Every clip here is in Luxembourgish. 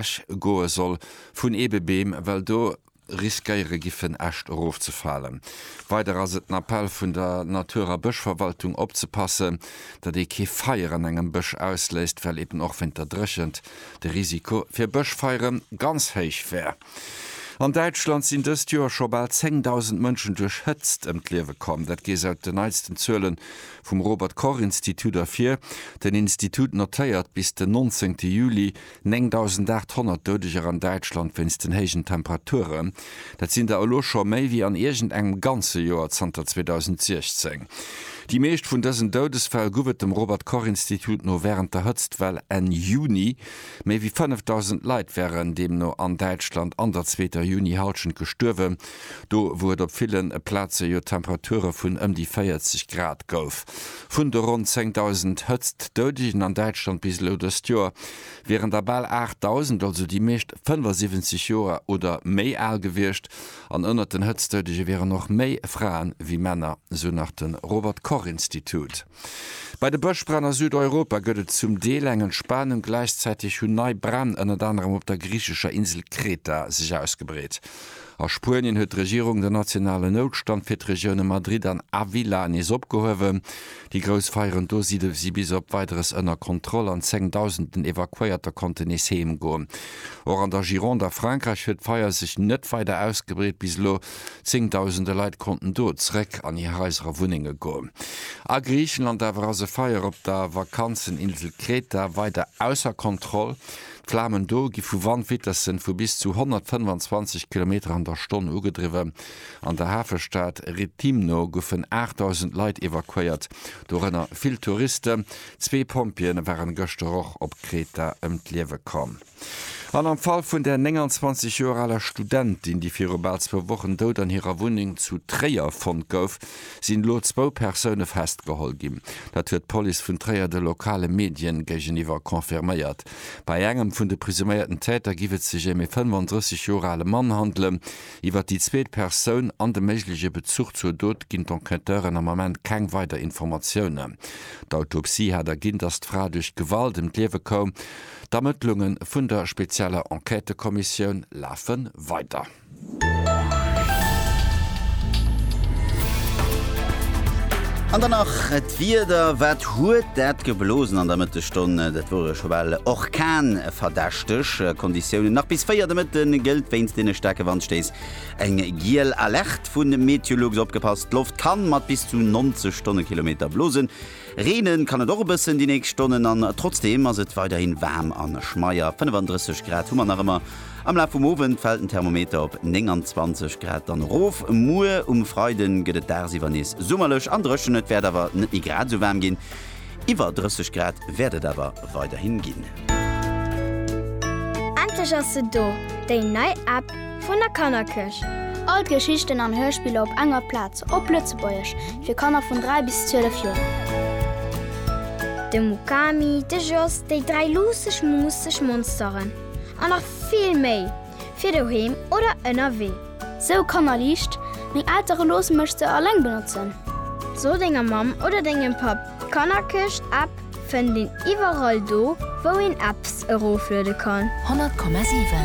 ewech goe soll vun Eebebeem, well do riskéiere giffen Äscht erofzefalen. Weider ass et den Appell vun der Natur a Bëschverwaltung opzepasse, datt ee kee Feier an engem Bësch ausléist, well eben och wéint der Dréchent de Risiko fir Bëschfeiere ganz héich wär. An Däitschland sinn dëst Joer scho bal 10.000 Mënschen duerch Hëtzt ëm d'Liewe komm. Dat geet aus den neitsten Zuele vum Robert-Koch-Institut ervir. Den Institut notéiert bis den 19 Juli 9.800 Doudeger an Däitschland wéinst den héijen Temperaturen. Dat sinn der elo scho méi wéi an iergend engem ganze Joer zanter 2016. Déi meescht vun dësen Doudesfäll guff et dem Robert Koch Institut no wärend der Hëtztwell Enn Juni. Méi wéi 5.000 Leit wären deemno an Däitschland an der zweeter Juni-Hallschent gestuerwen. Do wou et op ville Plaze jo Temperature vun ëm déi 40 Grad gouf. Vun de ronn 10.000 Hëtztdoudegen an Däitschland bis elo dëst Joer, wieren der bal 8.000, also déi meescht 75 Joer oder méi al gewiescht. An ënnert den Hëtztdoudege wieren och méi Fraen wéi Männer, sou nach de Robert Koch Institut. Bei de Bëschbränn a Südeuropa gëtt et zum Deel eng Entspanung. Gläichzäiteg hunn nei Bränn ënnert anerem op der griichescher Insel Kreta sech ausgebreet. A Spuenien huet d'Regierung den nationalen Noutstand fir d'Regioune Madrid an Avila nees opgehuewen. Déi grouss Feieren do si si bis op Weideres ënner Kontroll an zengdausenden Evakuéierter konnten nees heem goen. Och an der Gironde a Frankräich huet d'Feier sech net weider ausgebreet. Bis elo zéngdausende Leit konnten do zeréck an hir Haiser a Wunnenge goen. A Griichenland awer ass e Feier op der Vakanzeninsel Kreta weider ausser Kontroll. D'Flamen do gi vu Wandvitesse vu bis zu 125 Kilometer an der Stonn ugedriwwen. An der Hafestad Rethimno goufen 8.000 Leit evakuéiert, dorënner vill Touristen. Zwee Pompjeeë waren gëschter och op Kreta ëm d'Liewe komm. An am Fall vun der 29 Joer aler Studentin, déi viru bal zwou Wochen dout an hirer Wunneng zu Tréier fonnt gouf, sinn elo zwou Persoune festgeholl ginn. Dat huet d'Police vun Tréier de lokale Medien géigeniwwer confirméiert. Bei engem vun de presuméierten Täter giff et sech ém ee 35 Joer ale Mann handelen. Iwwer déi zweet Persoun an de méigleche Bezuch zur Dot ginn d'Enquêteuren am Ament keng weider Informatiounen. D'Autopsie hat erginn, dass d'Fra duerch Gewalt ëm d'Liewe koum. D'Ermëttlunge vun der spezieller Enquêtekommissioun lafe weider. An dann nach d'Wieder, wat huet dat geblosen an der Mëttesstonn? Dat wor e scho bal orkanverdächteg Konditiounen. Nach bis 4 de Mëtte gëllt wéinst deene staarke Wandstéiss eng giel Alerte vun Meteolux. Opgepasst, d'Loft kann mat bis zu 90 Stonnekilometer blosen. Reenen kann et och e bëssen déi nächst Stonnen an trotzdeem ass et weiderhin waarm a schmeier. 35 Grad hu mer nach ëmmer. Am Laf vum Owend fält den Thermometer op 29 Grad dann erof. Muer um Freiden gëtt et dagsiwwer nees summerlech an dréchen. Et wäert awer net méi grad esou waarm ginn. Iwwer 30 Grad wäert et awer weiderhin ginn. Endlech ass se do, déi nei App vun der Kannerkëscht! All d'Geschichten an Hörspiller op enger Plaz. Op Lëtzebuergesch fir Kanner vun 3 bis 12 Joer. De Mukami, de Jos, déi dräi luusseg muusseg Monsteren an nach vill méi fir doheem oder ënnerwee. Sou Kanner liicht, Meng Eltere loosse mech se alleng benotzen. So denger Mamm oder dengem Papp, d'Kannerkëscht App fënnt een iwwerall do wou een Apps erofluede kann. 100,7.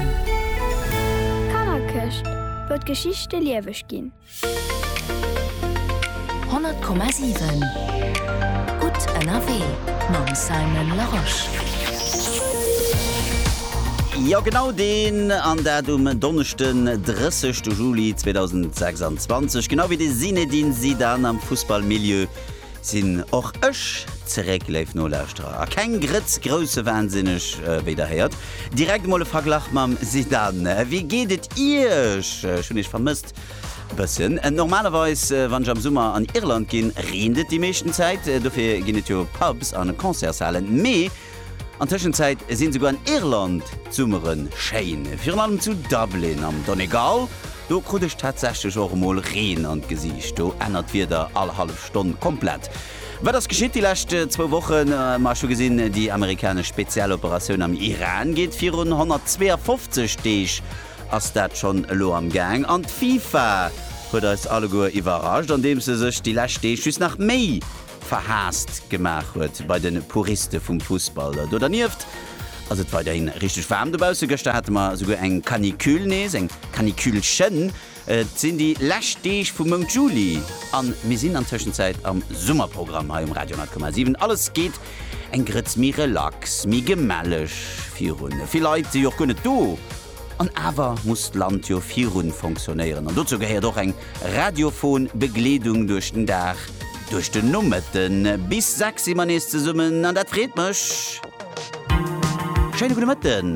D'Kannerkëscht wëll d'Geschichte lieweg ginn. 100,7 gutt ënnerwee mam Simon Larosche. Jo genau deen, an dat um Donneschden 30 Juli 2026, genau wéi de Zinedine Zidane am Fussballmilieu. Sinn och ech zeréck, léif Nolauschterer, a keng Grëtz groussewahnsinn-eg, wéi der héiert. Direkt emol e Verglach mam Zidane. Wéi geet et Iech? Ech hunn Iech vermësst e bëssen. Normalerweis, wann ech am Summer an Irland ginn, reent et déi meeschten Zäit. Dofir ginn et jo Pubs an Concertshalen. Mee. An Tëschenzäit sinn esouguer an Irland d'Summere schéin, virun allem zu Dublin am Donegal. Do krut ech tatsächlech och emol Reen an d'Gesiicht. Do ännert d'Wieder all hallef Stonn komplett. Wat ass geschitt déi lescht zwou Wochen? Ma ech hu gesinn, déi amerikanesch Spezialoperatioun am Iran geet virun. 152 Deeg ass dat schonn elo am Gaang. An d'FIFA huet eis alleguer iwwerrascht, andeems se sech déi lescht Deeg just nach méi verhaasst gemaach huet bei de Puriste vum Fussball. Do dernieft ass et weiderhin richteg waarm dobausse. Gëschter hate mer esouguer eng Canicule, nees eng Caniculchen. Et sinn déi lescht Deeg vum Mount Juli a mir sinn an Tëschenzäit am Summerprogramm hei um Radio 10,7. Alles geet eng Grëtz méi relax, méi gemelleg virun. Vill Leit si jo och guer net do, An awer muss d'Land jo virun fonctionnéieren an dozou gehéiert och eng radiophon Begleedung duerch den Dag, duerch den Nomëtten. Bis 6 si mer nees zesummen an dat freet mech. Schéine gudde Mëtten.